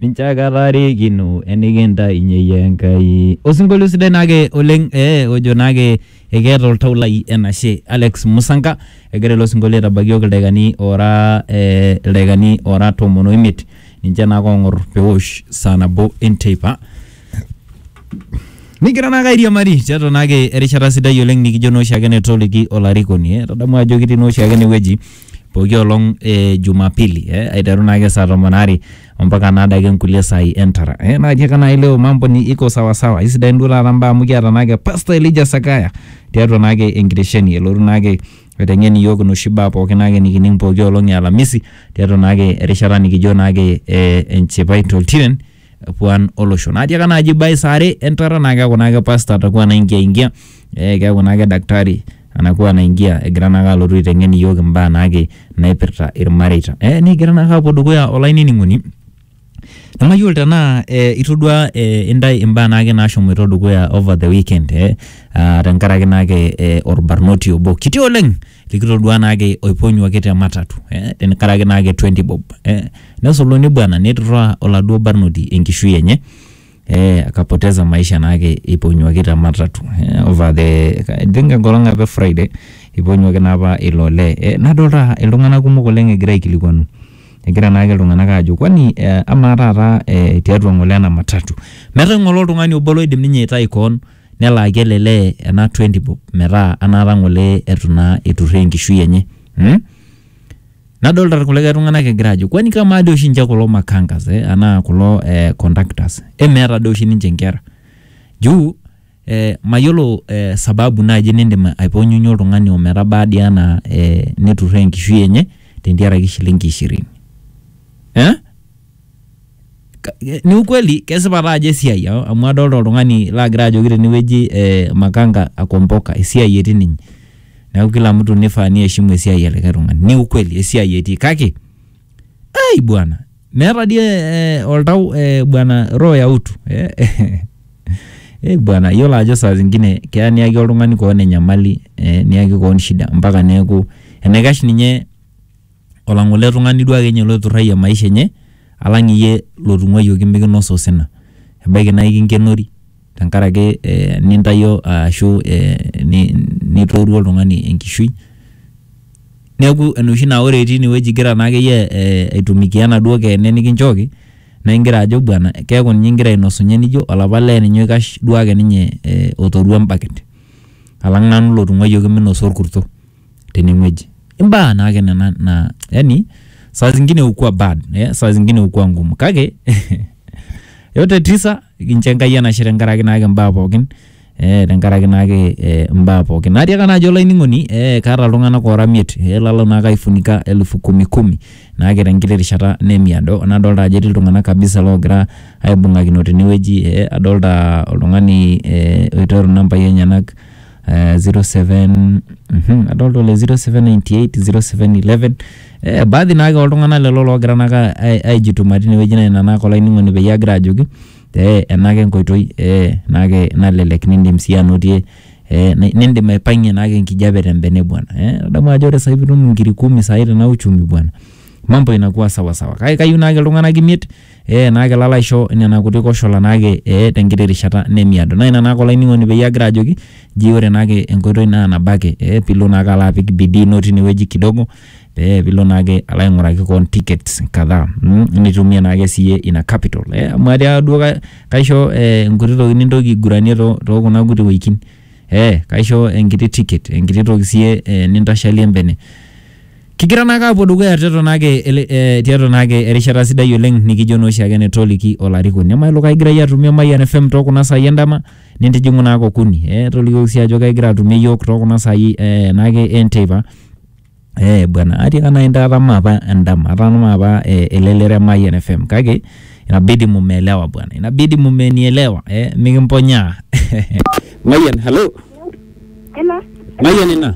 ninche ake ataarikino enikintainye Enkai. Osinkolio sidai naake oleng eh, ojo naake ekeeta oltau lai enashe Alex Musanka egira ilo sinkolio aitabaiki iyiook ildaikani oora eh, ildaikani oora tomon oimiet ninche naake oong'or peosh saa nabo enteipa nigira naake airiamari tiatua naake erishata sidai oleng nikijo naa oshiake netoliki olarikoni eh, tadamu ajo kitii naa oshiake enewueji pooki olong e Jumapili eh, aiteru naake saa tomon are ompaka naadake nkulie saai entara eh, naa tiaka naai leo mambo ni iko sawasawa isidain duo taata mbaa amu kiata naake Pastor Elijah Sakaya tiatua naake enkitesheni elotu naake aiteng'en iyiook inoshi baa pooki naake nikining pooki olong e Alamisi tiatua naake erishata nikijo naake eh, enchipai toltiren puan olosho naatiaka naaji ibae saa are entata naa keeku naake pasta atakuwa naingia ingia eh, keeku naake daktari anakuwa naingia egira naake alotu aiteng'en iyiook imbaa naake naipirta irmareita eh, nikigira naake apuo dukuya olainining'oni namayiolo tenaa eh, itodua eh, intae imbaa naake naashomoito dukuya over the weekend eh, ah, tenkaraki naake eh, orbarnoti obo kiti oleng likitodua naake oiponyuaki te matatu eh, tenkaraki naake 20 bob eh, nesuluni bwana neturraa oladuo barnoti enkishui enye eh, akapoteza maisha naake eiponyuaki te matatu eh, over the I think enkolong apa e Friday eiponyuaki naa apa ilo olee eh, nadolta iltung'anak kumok oleng egira aikilikuanu egira naake iltung'anak aajo kwani eh, amaa taata eh, tiatua ng'ole ena matatu metaa ng'ole oltung'ani obo loidim ninye aitai koon Nelaaki ele lee ena 20 bob metaa anaata ng'ole eitu naa eiturraa enkishui enye mm. Nadolita irkulikae tung'anak egira aajo kwani kamaa doi oshi ninche kulo makangas eh, anaa kulo eh, conductors emeeta doi oshi ninche inkera juu eh, mayiolo eh, sababu naaji nindim aiponyunyie oltung'ani ometabaa dii anaa eh, neturraa enkishui enye tentiaraki shilingi ishirini eh? ni ukweli kesipa taa ajo esiai a- amu adolta oltung'ani lagira ajoki tene wueji eh, makanga akomboka esiai etii ninye neeku kila mtu nifaa niheshimu esiai e likae tung'ani ni ukweli esiai etii kake ai bwana meeta dii eh, oltau eh, bwana roho ya utu eh, eh bwana iyiolo ajo saa zingine keya niyaki oltung'ani koon enyamali eh, niyaki koon shida mpaka neeku enaikash ninye olang'ole tung'ani duo ake ninye loiturrayie maisha enye alang iyie lotung'uayioki mikinosa osina. Ebaiki naa ikinkenori tenkaraki eh nintayio ashu eh nitoiwuo oltung'ani enkishui, neeku enoshi naa ore itii inewueji igira naa akeyie eh aitumikia enaduo keene nikinchooki naigira ajo bwana keeku ninye igira ainosunye nijo olapa lee ninye oikash duo ake ninye eh otoruo embaket alang nanu lotung'uayioki minosa orkuto. teneng'ueji. Imbaa naake nena naa yaani saa zingine hukua bad, eh, saa zingine hukua ngumu kake yote tisa kincho Enkai enashe tenkaraki naake imbaa pookin eh, tenkaraki naake eh, imbaa pookin. Atiaka naajo olainining'oni eh, kaata iltung'anak oora imiet eh, lalo naake aifunika elfu kumi kumi naake tenkiti rishata nemiado nadolta ajo etii iltung'anak kabisa loogira aibung'akino tene wueji eh, adolta oltung'ani eh, oitero inambai enyenak. eh, 07 mhm, adolta ole 0798 0711 eh, baadhi naake oltung'anak lelo loogira naake ai- aijituma tinewueji naa ina naake olainining'oni peyie agira ajoki te enake enkoitoi eh, naake nalelek nindim sii anotie eh, ni- nindim aipang'ie naake enkijape tembene bwana eh, adamu ajo ore sai pitum inkiri kumi sai tena uchumi bwana mambo inakuwa sawasawa kake kayieu naake iltung'anak imiet Ee, naa kelo alo aisho nena kuti koshola naake ee te nkiti rishata nemiado. Naa ina naake olainining'oni peyie agira ajoki nji ore naake enkoitoi naa nabo ake ee piilo naake alo apik bidii ino tine wueji kidogo pee piilo naake alo aing'uraki koon tickets kadhaa mm nitumie naake siye ina capital ee amu atia duo ka kaisho ee nkuti toki nintoki aiguranie too too kuna kuti woitin ee kaisho enkiti ticket, enkiti toki siye ee nintashalie embene. Kigira naake aapuo dukuya tiatua naake ele eh, tiatua naake erishata sidai oleng nikijo naa oshiake netoliki olarikoni emailo kaigirai atumie Emayian FM too kuna saai endama nintijing'u naake okuni eh, tolikioki sii ajo kaigira atumie iyiook too kuna saai eh, naake enteipa Eh bwana atiaka nai ntae atama apa endama atama apa eh, elelero e Mayian FM kake inabidi mumeelewa bwana inabidi mumenielewa eh, mikimponyaa Mayian hello Hello, Mayian ina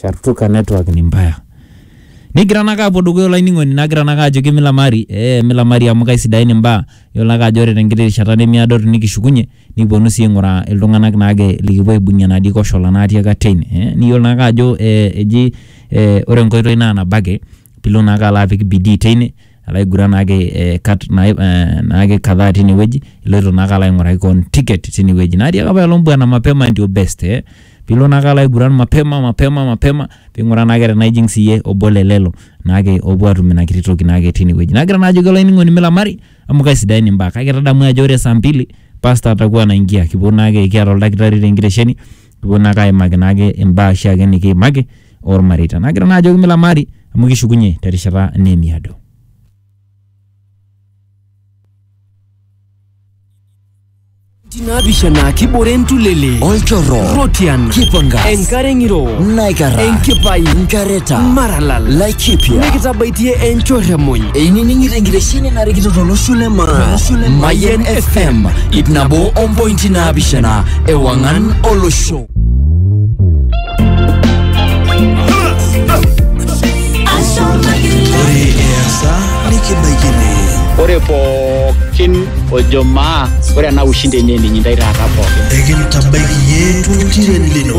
Shartuka network ni mbaya. Nigira nake apuo dukuya olainining'oni nagira nake ajoki milamari, ee milamari amu kaisidain imbaa. Yiolo ake ajo ore tenkiti rishata nemiado tinikishukunye, nikiponu si aing'uraa iltung'anak naake likipuo aibung'ie enatii koshola natii ake atua ine. Niyiolo naake ajo eji ore enkoitoi na nabo ake. pilo naake alo apik bidii teine alo aiguran naake eh, kat naai- eh, naake kadhaa tine wueji iloito naake alo aing'uraki koon ticket tine wueji naatiaka apailong bwana mapema ndio best eh pilo naake alo aiguran mapema mapema mapema ping'uraa naake tenaa ijing siiyie obo le lelo naake opuo atum ina kiti toki naake tine wueji nagira naa ajoki olainining'oni milamari amu kaisidain imbaa kake tadamu ajo ore saa mbili pasta atakuwa anaingia kipuo naake kiata oldakitari tenkitesheni kipuo naake aimaki naake imbaa oshiake nikiimaki ormareita. Nagira naa ajoki mila maari amu kishukunye terishata nemiado. naapishana kibore ntulele olchorro rotian kipanga enkare ng'iro naikara enkipai nkareta maralal laikipia nikitabaitie enchorre muj einining'ito enkitesheni narikito tolosho le maa mayen fm ip nabo ompointi naapishana Ewangan Olosho. Ore easa nikibaikini. Ore pookin ojo maa ore ena ushindi enye ninyi ndai taata pookin. Ekintabaiki yie tunkiren lino.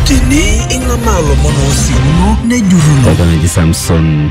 Tini ing'amaa lomon oosiuno nejurruno. Oltung'ani Samson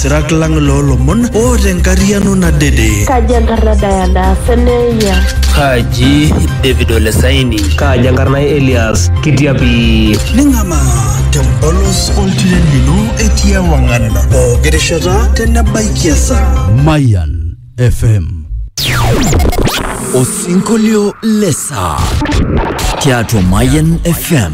Sirak lang loolomon oota enkariano nadede. Kaji enkarna Diana Seneia? Kaji David Ole Saini? Kaji enkarna Elias Kitiapi? Ning'amaa tempolos oltiren lino etii ewang'an pooki rishata tenebaiki esaa. Mayan FM. Osinkolio lesaa tiatua Mayan FM.